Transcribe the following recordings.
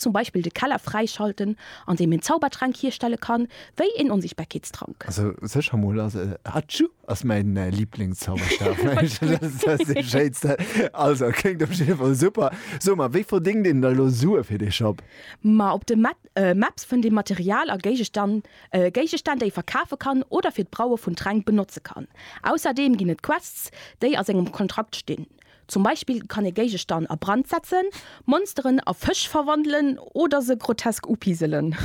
zum Beispill de Keller fräischalten an deem een Zaubertränk hierstelle kann, wéi een Onsichtbarkeetstrank. Also secher mol ass e Hatschu ass mäin Liiblings Zauberstab. Also kléngt op jidde Fall super. So mar wéi verdéngt een da lo Sue fir dee Shop? Ma op de Maps fënnt ee Material a Géigestand, Géigestänn déi ee verkafe kann oder fir d'Braue vun Tränk benotze kann. Ausserdeem ginn et Quests déi a sengem Kontrakt stinn. Zum Beispill kann ee Géigestann a Brand setzen, Monsteren a Fësch verwandelen oder se grotesk upiselen.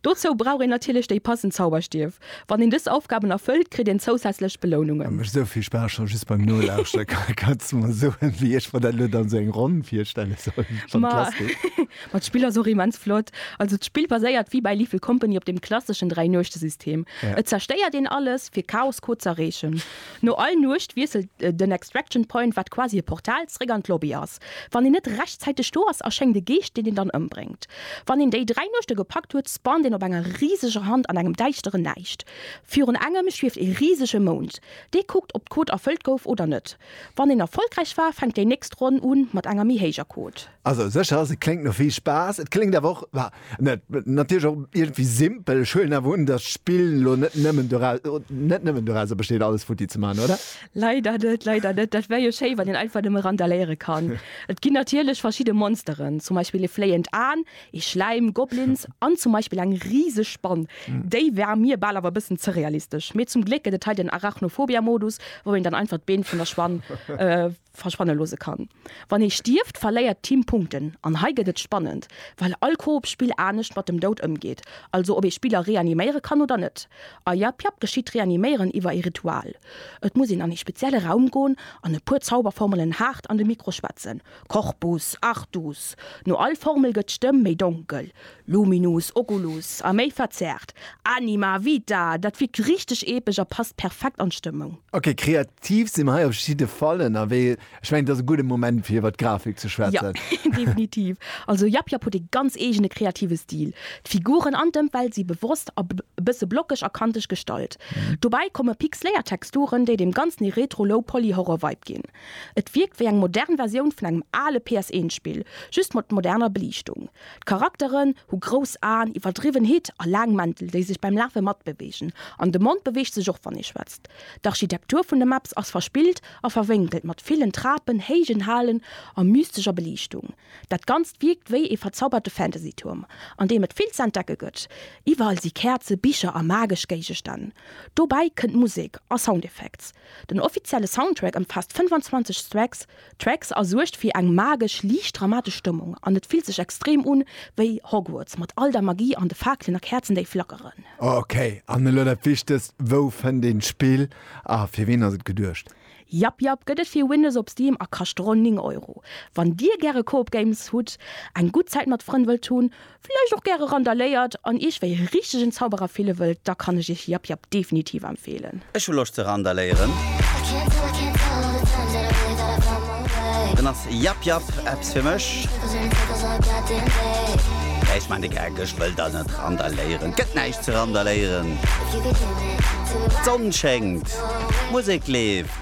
Dozou brauch een natierlech déi passend Zauberstief. Wann een dës Aufgaben erfëllt, kritt een zousätzlech Belounungen. Mécht sou vill Spaass, scho just beim Nolauschteren. Kanns de mer soen, wéi ech mer dat elo dann sou eng Ronn virstelle soll? Wann Ma d'Klass geet. Ma d'Spill ass och immens flott. Also d'Spill baséiert wéi bei Lethal Company op dem klasseschen Dräi-Nuechte-System. Et zerstéiert een alles, fir Chaos-Code z'erreechen. No all Nuecht wiesselt den Extraction Point, wat quasi e Portal, zeréck an d'Lobby ass. Wann een net rechtzäiteg do ass, erschéngt e Geescht, deen een dann ëmbréngt. Wann een déi dräi Nuechte gepackt huet, spawnt een op enger riseger Hand an engem däischteren Näischt. Virun engem schwieft ee risege Mound. Dee kuckt, ob d'Quot erfëllt gouf oder net. Wann een erfollegräich war, fänkt déi nächst Ronn un mat enger méi héijer Quot. Also sécher ass et kléngt no vill Spaass, et kléngt awer och, bah, net, natierlech och iergendwéi simpel. Ech huelen awer un, datt d'Spill elo net nëmmen dorau, net nëmmen dorauser besteet alles futti ze maachen, oder? Leider net, leider net. Dat wär jo schéi, wann een einfach nëmme randaléiere kann. Et ginn natierlech verschidde Monsteren, zum Beispill ee fléiend Aen, ee Schläim, Goblins an zum Beispill eng riseg Spann. Déi war mir bal awer e bëssen ze realistesch. Mee zum Gléck gëtt et hei den Arachnophobia-Modus, wou een dann einfach d'Been vun der Spann verschwanne loosse kann. Wann ee stierft, verléiert d'Team Punkten, an hei gëtt et spannend, well all Koop-Spill anescht mat dem Doud ëmgeet, also ob ee Spiller reaniméiere kann oder net. A jap jap geschitt d'Reaniméieren iwwer ee Ritual. Et muss een an ee spezielle Raum goen an e puer Zauberformelen haart an de Mikro schwätzen, Corpus, Artus. No all Formel gëtt d'Stëmm méi donkel, Luminus oculus a méi verzerrt. Anima vita, dat wirkt richteg epesch a passt perfekt an d'Stëmmung. Ok, kreativ si mer hei op jidde Fall ënnerwee. Ech mengen, et ass e gudde Moment fir iwwert d'Grafik ze schwätzen. Jo, definitiv. Also Yap Yap huet ee ganz eegene kreative Stil. D'Figuren an d'Ëmwelt si bewosst a bësse blockeg a kanteg gestallt. Dobäi komme pixléiert Texturen, déi dem Ganzen ee Retro-Low-Poly-Horror-Vibe ginn. Et wierkt wéi eng modern Versioun vun engem ale PS-1-Spill, just mat moderner Beliichtung. D'Charakteren hu grouss Aen, iwwerdriwwen Hitt a laang Mäntel, déi sech beim Lafe matbeweegen. An de Mond beweegt sech och, wann ee schwätzt. D'Architektur vun de Maps ass verspillt a verwénkelt, mat villen Trapen, héijen Halen a mystescher Beliichtung. Dat Ganzt wierkt wéi ee verzauberte Fantasy-Tuerm, an deem et vill ze entdecke gëtt. Iwwerall si Käerze, Bicher a magesch Géigestänn. Dobäi kënnt Musek a Soundeffects. Den offizielle Soundtrack ëmfaasst 25 Stracks. D'Tracks a suergt fir eng magesch, liicht dramatesch Stëmmung an et fillt sech extrem un wéi Hogwarts mat all der Magie an de Faakelen a Käerzen déi flackeren. Ok, an elo dat Wichtegst, wou fënnt een d'Spill a fir ween ass et geduecht? Jap jap, gëtt et fir Windows op Steam a kascht ronn 9 Euro. Wann dir gäre Coop Games hutt, eng gutt Zäit mat Frënn wëllt hunn, villäicht och gäre randaléiert an iech wéi e richtegen Zauberer fille wëllt, da kann ech iech Yap Yap definitiv empfeelen. Ech hu Loscht ze randaléieren. Dann ass Yap Yap eppes fir mech. Mä ech maan de Gag, ech wëll da net randaléieren. Et gëtt näischt ze randaléieren. D'Sonn schéngt, d'Musek leeft.